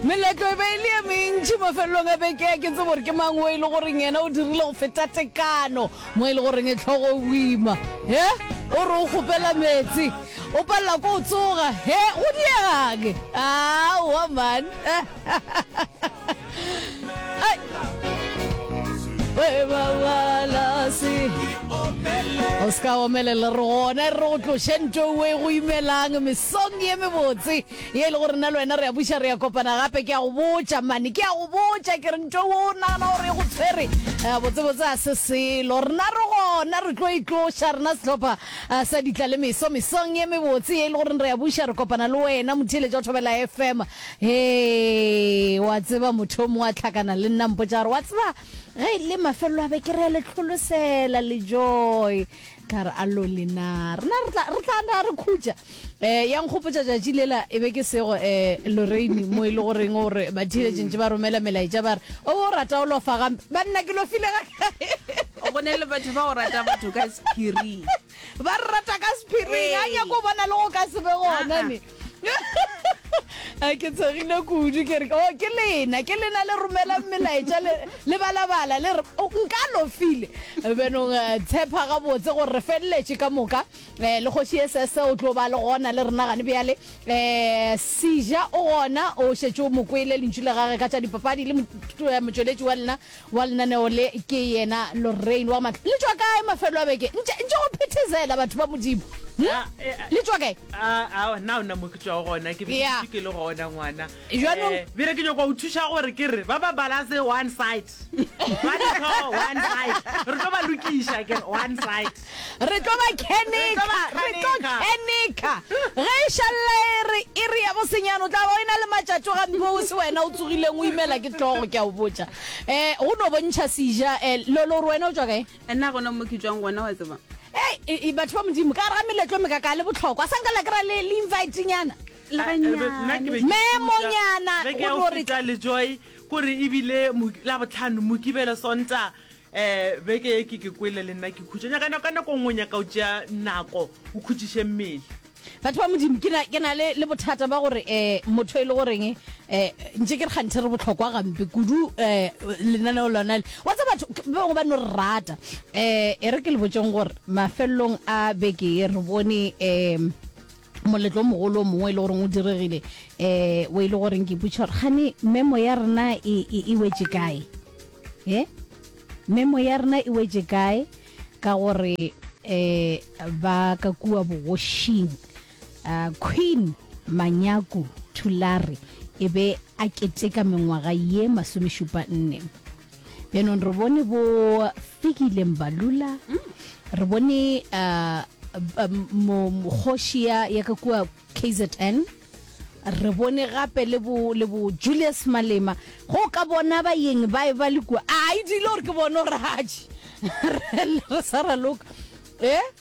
Meletlo e be e le ye mentši mafelelong a beke. A ke tsebe gore ke mang wo e le goreng yena o dirile go feta tekano, mo e le goreng e tlhogo e boima. He, o re o kgopela meetse, o palela ko o tsoga. He, go diega'ng? Aowa man. O se ka omelela, re gona e re go tloše nto ewe e go imelang, mesong ye mebotse. Ye e lego rena le wena re a buša, re a kopana gape. Ke a go botša, mane, ke a go botša, ke re ntho o nagana gore e go tshwere, eh, botsebotse ga se selo. Rena re gona, re tlo itloša, rena sehlopha eh, sa ditla le meso, mesong ye mebotse ye e le goreng re a buša, re kopana le wena, motheeletša wa Thobela FM. Hee, wa tseba motho o mongwe a tlhakana le nna mpotša gore wa tseba ge e le mafelelo a beke re a le tlholosela le joy ka re a lole na rena re tla re tla na re khutša eh ya nkgopotša tšatši lela e be ke sego eh Lorraine mo e le go reng gore ba thile tšentše ba romela melaetša ba re o bo rata o lofa gampe ba nna ke lofile ga o go ne le batho ba go rata batho ka sephiri ba re rata ka sephiri ga nyako bona le go ka se be gona ne a ke tshegile kudu ke re o oh, ke lena ke lena le romelang melaetša le balabala le re oh, nka lofile benong eh, tshepa gabotse gore re feleletše ka moka um le kgoši e sese o tlo ba le gona le rena gane bjale um eh, seja o gona o šetše o mokwele lentšu le gage ka tša dipapadi le eh, motšweletši wa lena Wa lenaneo le ke yena Lorraine wa Matla. Le tšwa kae mafelo a beke? Ntše, ntše go phethezela, batho ba Modimo. Hm? Ah, eh, ah. Le tšwa kae? a a na o na mo ke tswago gona ke be ke Yeah. dutše ke le gona ngwana Jwanong- Eh, bjale ke nyako o thuša gore ke re ba ba balase one side ba ditlhogo one side re tlo ba lokiša ke re one side Re tlo ba kheneka, re tlo kheneka. Ge e šalla e re iri ya bosenyane, o tla ba o ena le matšatšo gampe o se wena o tsogileng o imela ke tlogo, ke a o botša. Eh, go no bontšha seja, eh, Lolo, o re wena o tšwa kae? Nna gona mo ke tšwang gona, wa tseba. Hei, e, e, batho ba Modimo, ka gare ga meletlo e mekaka le bohlokwa, sa nka la kry-a le, le invite-nyana. Leganyane. Memonyana, go no re. Ke a o feta le Joy, ko re ebile mo, Labohlano, Mokibelo, Sontaga, Ee, beke e ke ke kwele le nna ke khutša. Nyaka nako, ka nako nngwe nyaka o tšea nako o khutšiše mmele. Batho ba Modimo, ke na, ke na le, le bothata ba gore eh, motho e le goreng eh, ntše ke re kganthe re bohlokwa gampe kudu eh, lenaneo lona le wa tsa batho k- ba bangwe ba no re rata eh, e re ke le botšeng gore mafelelong a beke e re bone eh, moletlo o mogolo o mongwe e le goreng o diregile um o e le goreng ke putšha gore gane memo ya rena e, e, e wetse kae e memo ya rena e wetse kae ka gore um ba ka kua bogošing um queen manyaku thulare e be a keteka mengwaga ye masomešupa nne yaanong re bone bo fikile mbalula re bone uh, um, mo- mo- kgoši ya ya ka kua kzn re bone gape le bo le bo julius malema go ka bona bayeng ba ba le kua a e dile gore ke bone gore gaji re sa raloka e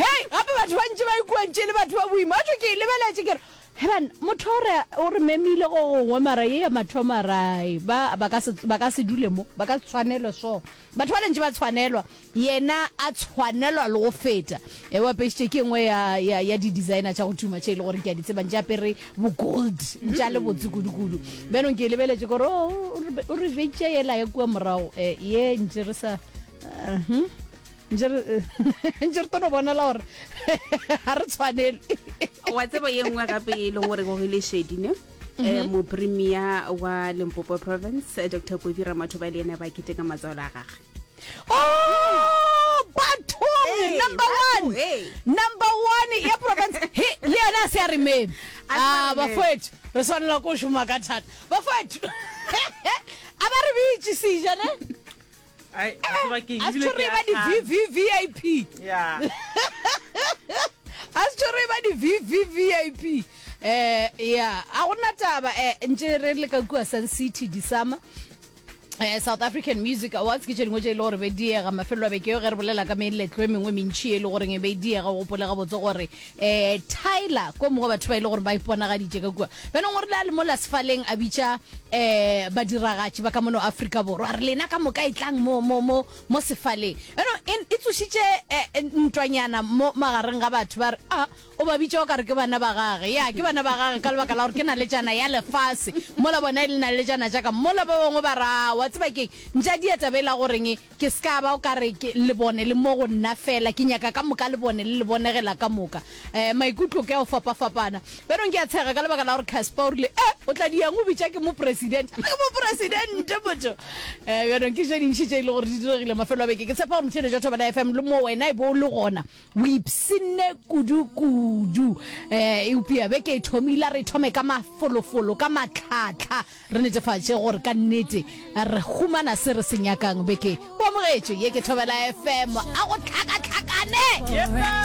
Hei, gape batho ba ntše ba ikuetše e le batho ba boima. Wa tšwa ke e lebeletše ke re, He banna, motho o re, o re memile go gongwe, mara ye ya mathomo ra e ba, ba ka se, ba ka se dule mo, ba ka se tshwanelwe so. Batho bale ntše ba tshwanelwa, yena a tshwanelwa le go feta. E, o apešitše ke engwe ya, ya, ya di-designer tša go tuma tše e le gore ke a di tseba, ntše apere bo-gold, ntše a le botse kudu-kudu. Bjanong ke e lebeletše ke re, Oh, o re, o re betša yela ya kua morago, e, ye ntše re sa, uh-huh. Ntše re ntše re tono bonala gore ga re tshwanele. Wa tsebo ye nngwe gape e leng gore go le shedi ne um mhm. mopremia wa limpopo province eh, dr kofi ramatho ba le ena ba kete ka matswalo a gage oh, bathong number one number one ya province he le yone a se ya rememe a ah, bafoetho re tshwanela ko šoma ka thata bafoetho a ba re beitsisejane Ai, a tseba ke eng, a se ebile tšho ke re e ba a hlanya. di-vvvip Yeah. a se tšho re e ba di-vvvip um ya a go nna taba um ntše re le ka kua sun city disama Eh, south african music awards ke tše dingwe tše e le gore be diega mafelelo a beke yo ge re bolela ka meletlo e mengwe mentšhi e le goreng e be e diega o gopole gabotse gore eh, Tyler ko mongwe batho ba ile e gore ba iponagaditše ka kua bjanong o rile a le mo lasefaleng a bitša eh badiragatši ba ka mono Afrika Borwa re lena ka moka e tlang mo mo mo mo sefaleng eno e tsošitše eh, eh, ntwanyana mo magareng ga batho ba re a ah, o ba bitša o ka re ke bana ba gage ya ke bana ba gage ka lebaka la gore ke na le jana ya lefase mola bona e le na le jana jaaka mola ba bangwe ba ra wa tseba keng ntša dieta be la goreng Ke se ka ba o ka re ke le bone le mo go nna feela. Ke nyaka ka moka le bone le le bonegela ka moka. Eh, maikutlo ke a go fapafapana. Bjanong ke a tshega ka lebaka la gore Casper o rile, Eh, o tla di yang o bitša ke Mopresidente. Ke Mopresidente motho! Eh, bjanong ke tše dintši tše e le gore di diregile mafelo a beke. Ke tshepa gore motšheletšo wa Thobela FM le mo wena e be o le gona. O ipshinne kudu-kudu. Eh, eupša beke e thomile, re thome ka mafolofolo, ka matlhatlha, re netefatše gore ka nnete re humana se re se nyakang. Beke o amogetše ye ke Thobela FM. A go hlakahlakane!